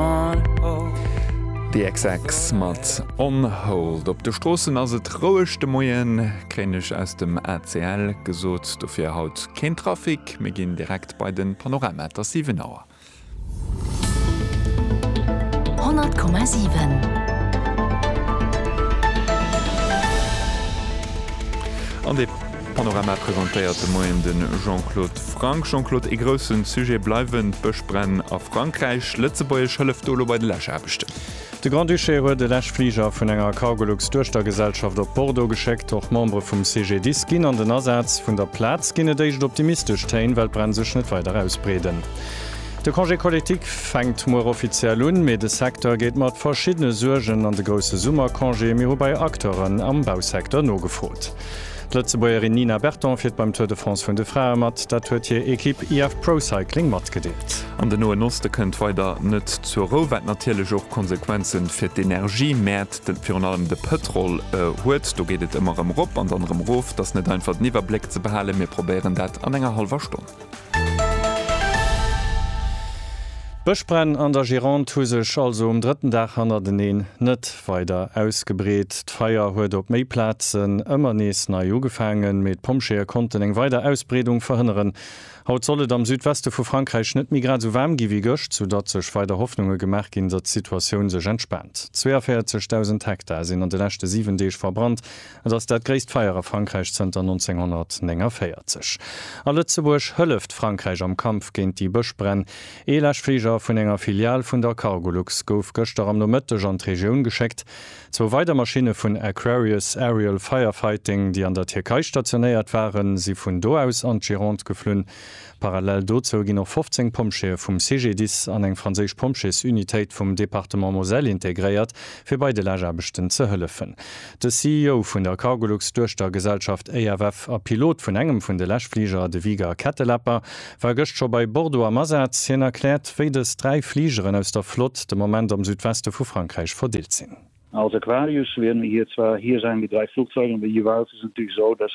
On hold. The XX mat On hold. Op de Stroossen ass et roueg de Moien, kréien ech aus dem ACL gesot. Dofir haut keen Trafic. Mir ginn direkt bei den Panorama. Et ass 7 Auer. 100,7. An de. Panorama presentéiert de Moien de Jean-Claude Franck. Jean-Claude, ee grousse Sujet bleiwen d'Bëschbränn a Frankräich. Lëtzebuergesch hëlleft do elo bei de Läschaarbechten. De Grand-Duché huet e Läschfliger vun enger Cargolux-Duechtergesellschaft op Bordeaux geschéckt. Och Membere vum CGDIS ginn an den Asaz. Vun der Plaz ginn et éischt optimistesch Téin, well d'Bränn sech net weider ausbreeden. De Congé collectif fänkt muer offiziell un, mee de Secteur geet mat verschiddene Suergen an de grousse Summercongé. Mir hu bei Acteuren am Bausecteur nogefrot. D'Lëtzebuergerin Nina Berton fiert beim Tour de France vun de Frae mat. Dat huet hir Ekipp IF Pro Cycling matgedeelt. An den Noen Oste kënnt weider net zur Rou, wat natierlech och Konsequenze fir d'Energiemäert, virun allem de Pëtrol, huet. Do geet et ëmmer erëm erop an dann erëm erof. Et ass net einfach den Iwwerbléck ze behalen. Mir probéieren dat an enger hallwer Stonn. D'Bëschbränn an der Gironde hu sech also um drëtten Dag hannerteneen net weider ausgebreet. D'Feier huet op méi Plazen ëmmer nees nei ugefaangen, mee d'Pompjeeë konnten eng weider Ausbreedung verhënneren. Haut soll et am Südweste vu Frankräich net méi grad esou waarm gi wéi gëscht, soudatt sech weider Hoffnunge gemaach ginn, datt d'Situatioun sech entspaant. 42.000 Hektar sinn an de leschte 7 Deeg verbrannt, Et ass dat gréisst Feier a Frankräich zënter 1949. A Lëtzebuerg hëlleft Frankräich am Kampf géint déi Bëschbränn. Ee Läschfliger vun enger Filial vun der Cargolux gouf gëschter am Nomëtteg an d'Regioun geschéckt. Zwou weider Maschinne vun Aquarius Aerial Firefighting, déi an der Tierkei stationéiert waren, si vun do aus an d'Gironde geflunn. Parallel dozou ginn och 15 Pompjeeë vum CGDIS an eng franséisch Pompjeesunitéit vum Departement Moselle integréiert, fir bei de Laachaarbechten ze hëllefen. De CEO vun der Cargolux Duechtergesellschaft EFF a Pilot vun engem vun de Läschfliger, de Wiger Kettelapper, war gëscht scho bei Bordeaux am Asaz. Hien erkläert, wéi dës dräi Fligeren aus der Flott de Moment am Südweste vu Frankräich verdeelt sinn. Als Aquarius leeën mir hir zwar hir säin, déi dräi Flugzeiger, mee jeeweils ass et natierlech esou, dass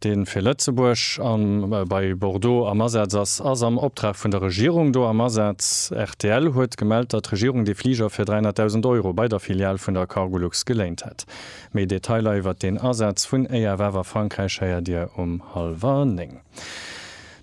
deen fir Lëtzebuerg an bei Bordeaux am Asaz ass, ass am Optrag vun der Regierung do am Asaz. Rtl huet gemellt, datt d'Regierung dee Fliger fir 300.000 Euro bei der Filial vun der Cargolux geléint hätt. Méi Detailer iwwert deen Asaz vun EFF a Frankräich héiert Dir um hallwer néng.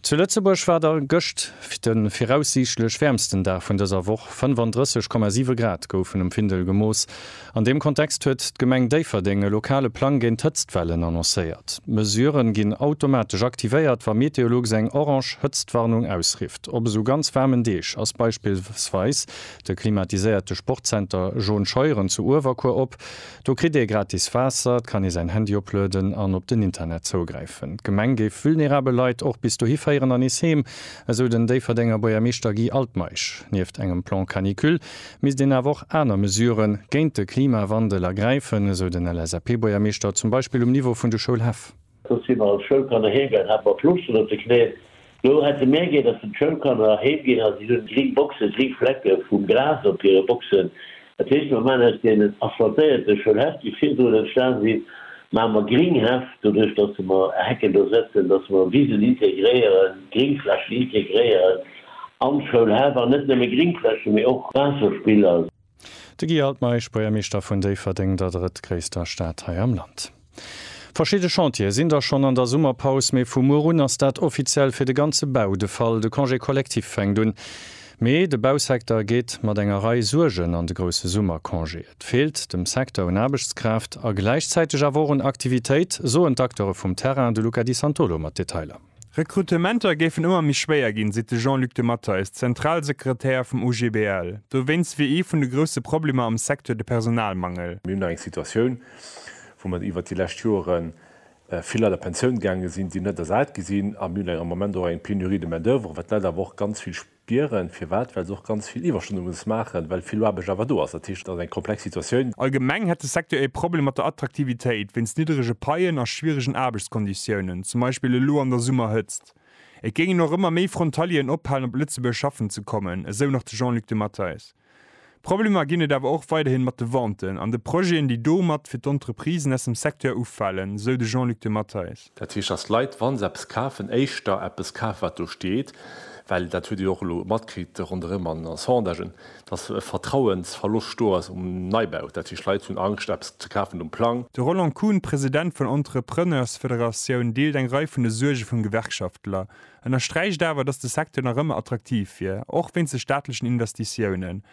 Zu Lëtzebuerg war der gëscht de viraussiichtlech wäermsten Dag vun dëser Woch, 35,7 Grad goufen um Findel gemooss. An deem Kontext huet d'Gemeng Déifferdeng e lokale Plang géint d'Hëtztwellen annoncéiert. D'Mesurë ginn automatesch aktivéiert, wa Meteolux eng orange Hëtztwarnung ausrifft. Op esou ganz waarmen Deeg ass beispillsweis de klimatiséierte Sportzenter Jaune Scheuren zu Uewerkuer op. Do kritt ee gratis Waasser, et kann ee säin Handy oplueden an op den Internet zougräifen. D'Gemeng géif vulnerabel Leit och bis dohi féieren an nees heem, esou den Déifferdenger Buergermeeschter Guy Altmeisch. Nieft engem Plan Canicule misst een awer och aner Mesure géint de Klimawandel ergräifen, esou den LSAP-Buergermeeschter, zum Beispill um Niveau vun de Schoulhäff. Do si mer als Schoulkanner heemgaang, hate mer Fluchten op de Knéien. Do hätt se mär ginn, dass den d'Schoulkanner heemginn a si hunn gring Boxen, gring Flecke vum Gras op hire Boxen. Dat heescht, mer maachen aus deenen asphaltéierte Schoulhäff, déi virdrun entstan sinn, maache mer gring Häff, doduerch dass se mer Hecken do setzen, dass mer Wisen integréieren, Gringflächen integréieren an d'Schoulhäff, an net nëmme Gringflächen, mee och Waasserspiller. De Guy Altmeisch, Buergermeeschter vun Déifferdeng, der drëttgréisster Stad hei am Land. Verschidde Chantiere sinn da schonn an der Summerpaus, mee vu muer un ass dat offiziell fir de ganze Bau de Fall. De Congé collectif fänkt un, mee de Bausecteur geet mat enger Rei Suergen an de grousse Summercongé. Et feelt dem Secteur un Aarbechtskraaft a gläichzäiteg awer och un Aktivitéit, soen d'Acteure vum Terrain. De Luca Di Santolo mat Detailer. Rekrutementer géifen ëmmer méi schwéier ginn, seet de Jean-Luc de Matteis, Zentralsekretär vum OGBL. Dowéinst wier ee vun de grousse Problemer am Secteur de Personalmangel. Mir hunn nach eng Situatioun, wou mer iwwert déi lescht Jore vill Leit a Pensioun gaange sinn, déi net ersat gi sinn. A mir hunn eng am Moment och eng Pénurie de main-d'oeuvre, wat d'Leit awer och ganz vill D'Dieren, firwat? Well se och ganz vill Iwwerstonne muss maachen, well vill Aarbecht awer do ass. Dat heescht, et ass eng komplex Situatioun. Allgemeng hätt de Secteur ee Problem mat der Attraktivitéit wéinst nidderege Paien a schwieregen Aarbechtskonditiounen, zum Beispill elo an der Summerhëtzt. Et géingen och ëmmer méi Frontalieren ophalen, op Lëtzebuerg schaffen ze kommen, esou nach de Jean-Luc de Matteis. Problemer ginn et awer och weiderhin mat de Venten an de Projeten, déi domat fir d'Entreprisen aus dem Secteur ufalen, esou de Jean-Luc de Matteis. Dat heescht, datt d'Leit, wa se eppes kafen, éischter eppes kafen, wat do steet, well, dat hutt Dir jo och elo matkritt ronderëm an den Sondagen, datt e Vertrauensverloscht do ass um Neibau. Dat heescht, d'Leit hunn Angscht, eppes ze kafen um Plang. De Roland Kuhn, President vun Entrepreneursfederatioun, deelt eng Rei vun de Suerge vum Gewerkschaftler. ënnersträicht awer, datt de Secteur nach ëmmer attraktiv wier, och wéinst de staatlechen Investitiounen,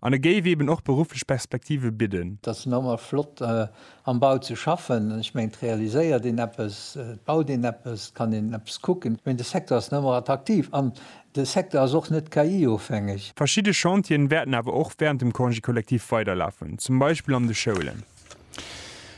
an e géif eeben och berufflech Perspektive bidden. Et ass nach ëmmer flott am Bau ze schaffen. Ech mengen, et realiséiert een eppes, et baut een eppes, et kann een eppes kucken. Mee de Secteur ass nach ëmmer attraktiv an de Secteur ass och net KI-ofhängeg. Verschidde Chantieren wäerten awer och wärend dem Congé collectif weiderlafen, zum Beispill an de Schoulen.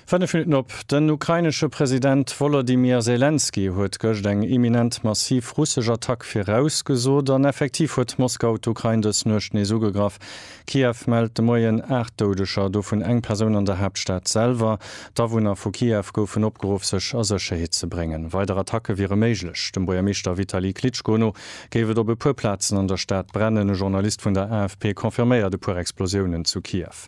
Fënnef Minutten op. Den ukrainesche President Wolodymyr Selenskyj huet gëscht eng imminent massiv russesch Attack virausgesot an effektiv huet Moskau d'Ukrain dës Nuecht nees ugegraff. Kiew mellt de Moien 8 Doudeger, dovun eng Persoun an der Haaptstad selwer. D'Awunner vu Kiew goufen opgeruff sech a Sécherheet ze bréngen. Weider Attacke wiere méiglech. Dem Buergermeeschter Vitali Klitschko no géif et op e puer Plazen an der Stad brennen. E Journalist vun der AFP confirméiert e puer Explosiounen zu Kiew.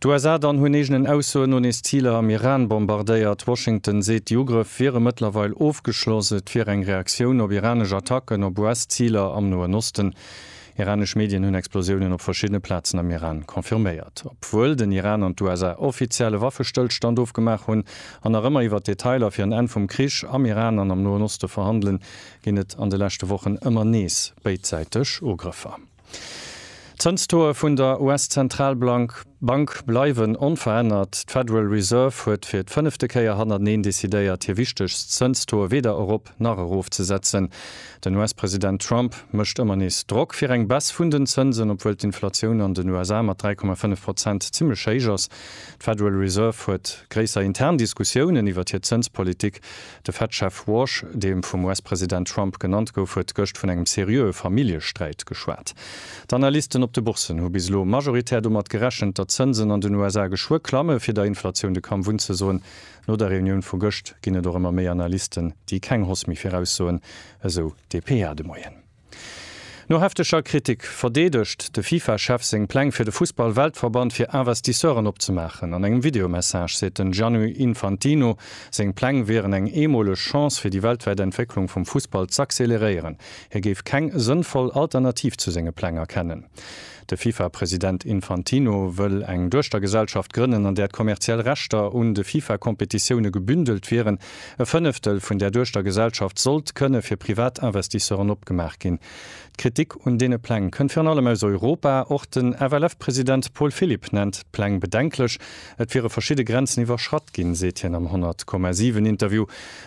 D'USA dann hunn eegenen Aussoen no nees Ziler am Iran bombardéiert. Washington seet, déi Ugrëff wiere mëttlerweil ofgeschloss. Et wier eng Reaktioun op iranesch Attacken op US-Ziler am Noen Osten. Iranesch Medien hunn Explosiounen op verschiddene Plazen am Iran confirméiert. Obwuel den Iran an d'USA offiziell e Waffestëllstand ofgemaach hunn an nach ëmmer iwwer d'Detailer fir en Enn vum Krich am Iran an am Noen Oste verhandelen, ginn et an de leschte Wochen ëmmer nees béidsäiteg Ugrëffer. D'Zënstoe vun der US-Zentralbank bleiwen onverännert. D'Federal Reserve huet fir d'fënnefte Kéier hannerteneen decidéiert, hir wichtegst Zënstoe weder erop nach erofzesetzen. Den US-President Trump mécht ëmmer nees Drock fir eng Baisse vun den Zënsen, obwuel d'Inflatioun an den USA mat 3,5 Prozent zimmlech héich ass. D'Federal Reserve huet gréisser intern Diskussiounen iwwert hir Zënspolitik. De Fed-Chef Warsh, dee vum US-President Trump genannt gouf, huet gëscht vun engem seriöe Familljesträit geschwat. D'Analysten op de Bourssen hu bis elo majoritär domat gerechent, datt d'Zënsen an den USA geschwë klamme fir der Inflatioun de Kampf unzesoen. No der Reunioun vu gëscht ginn et och ëmmer méi Analysten, déi keng Hoss méi viraussoen, esou dpa de Moien. No hefteger Kritik verdeedegt de FIFA-Chef seng Pläng fir de Fussball-Weltverband fir Investisseuren opzemaachen. An engem Videomessage seet den Gianni Infantino, seng Pläng wieren eng eemoleg Chance fir déi weltwäit Entwécklung vum Fussball z'acceleréieren. Hie géif keng sënnvoll Alternativ zu senge Pläng erkennen. De FIFA-President Infantino wëll eng Duechtergesellschaft grënnen, an där d'kommerziell Rechter un de FIFA-Competitioune gebündelt wieren. E Fënneftel vun där Duechtergesellschaft sollt kënne fir privat Investisseuren opgemaach ginn. D'Kritik un deene Pläng kënnt virun allem aus Europa. Och den FLF-President Paul Philipp nennt d'Pläng bedenklech. Et wiere verschidde Grenzen iwwerschratt ginn, seet hien am 100,7 Interview.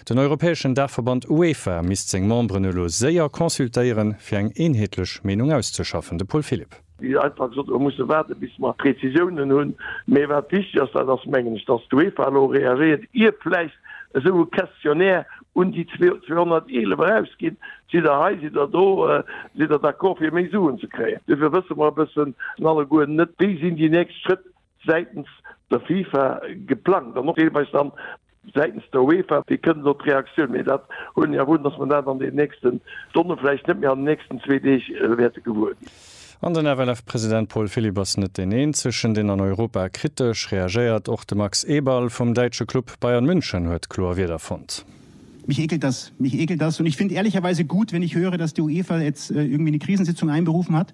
Den europäeschen Daachverband UEFA misst seng Memberen elo séier consultéieren, fir eng eenheetlech Meenung auszeschaffen. De Paul Philipp. Wéi einfach gesot, mir musse waarden, bis mer Prezisiounen hunn. Mee wat wichteg ass, dat ass, mengen ech, datt d'UEFA elo reagéiert, ier vläicht esou e Questionnaire un déi 211 erausgeet, Sidd Der hei, sidd Der do, sidd Der d'accord fir méi Suen ze kréien? Dofir wësse mer e bëssen alleguer net, wéi sinn déi nächst Schrëtt. säitens der FIFA geplangt an och deelweis dann säitens der UEFA. Wéi kënnt elo d'Reaktioun? Mee dat huelen ech awer un, datt mer dat an den nächsten Stonnen, vläicht net méi an den nächsten zwee Deeg, wäerte gewuer ginn. An den FLF-President Paul Philipp ass net deen eenzegen, deen an Europa kritesch reagéiert. Och de Max Eberl vum däitsche Club Bayern München huet kloer Wierder fonnt. Mich ekelt das. Mich ekelt das. Und ich finde ehrlicherweise gut, wenn ich höre, dass die UEFA jetzt irgendwie eine Krisensitzung einberufen hat.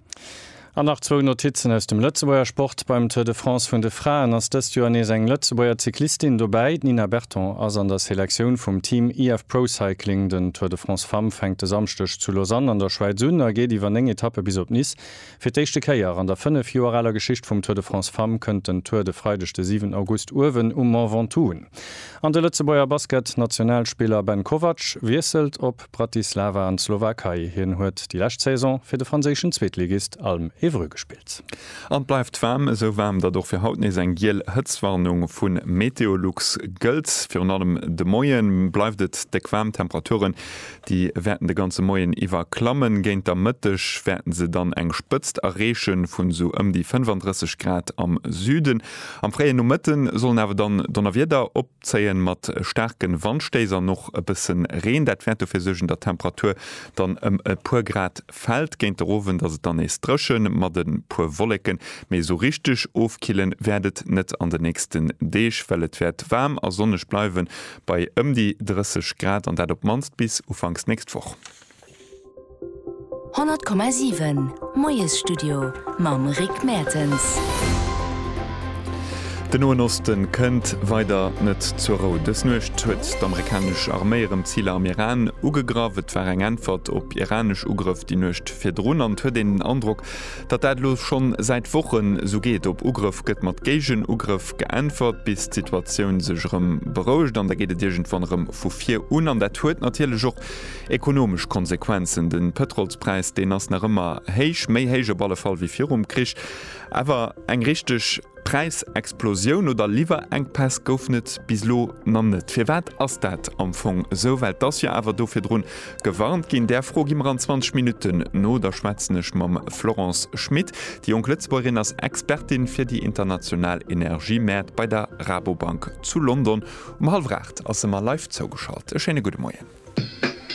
An nach zwou Notizen aus dem Lëtzebuerger Sport, Beim Tour de France vun de Fraen ass dëst Joer nees eng Lëtzebuerger Cyclistin dobäi. D'Nina Berton ass an der Selektioun vum Team IF Pro Cycling. Den Tour de France Femmes fänkt de Samschdeg zu Lausanne an der Schwäiz un a geet iwwer 9 Etappe bis op Nice. Fir d'éischte Kéier an der 5 Joer aler Geschicht vum Tour de France Femmes kënnt den Tour de Freideg de 7 August uewen um Mont Ventoux un. An de Lëtzebuerger Basket-Nationalspiller Ben Kovac wiesselt op. Osp Bratislava an d'Slowakei. Hien huet déi lescht Saison fir de franséischen Zweetligist Alm Évreux gespillt. An et bleift waarm, esou waarm, datt och fir haut nees eng giel Hëtztwarnung vu Meteolux gëllt. Virun allem de Moie bleift et déck waarm, d'Temperaturen, déi wäerten de ganze Moien iwwer klammen. Géint der Mëtteg wäerten se dann eng Spëtzt erreeche vun esou ëm déi 35 Grad am Süden. Am fréie Nomëtte sollen awer dann Donnerwieder op zéien, mat staarken Wandstéiss an och e bëssen Reen. Dat wäert dofir suergen, datt d'Temperatur dann ëm e puer Grad fällt. Géint de Rowend ass et dann nees drëchen, mat e puer Wolleken, mee esou richteg ofkillen wäert et net an de nächsten Deeg, well et wäert waarm a sonneg bleiwen, bei ëm déi 30 Grad, an dat op d'mannst bis ufanks nächst Woch. 100,7 Moiesstudio mam Rick Mertens. Den Noen Osten kënnt weider net zur Rou. Dës Nuecht huet d'amerikanesch Arméi erëm Ziler am Iran ugegraff. Et war eng Äntwert op iranesch Ugrëff déi Nuecht virdrun an et huet een den Androck, datt dat elo schonn säit Wochen esou geet. Op Ugrëff gëtt mat Géigenugrëff geäntwert, bis d'Situatioun sech erëm berouegt an da geet et iergendwann erëm vu vir un. An dat huet natierlech och. Ekonomesch Konsequenzen, De Pëtrolspräis, deen ass nach ëmmer héich, méi héich op alle Fall wéi virum Krich. Awer eng richteg Präisexplosioun oder Liwwerenkpäss goufen et bis elo nach net. Firwat ass dat am Fong esou? Well et ass jo awer do virdrun gewarnt ginn. Där Fro gi mer an 20 Minutten no. Da schwätzen ech mam Florence Schmit. Déi jonk Lëtzebuergerin ass Expertin fir déi international Energiemäert bei der Rabobank zu London. Um hallwer 8 ass se mer live zougeschalt. E schéine gudde Moien.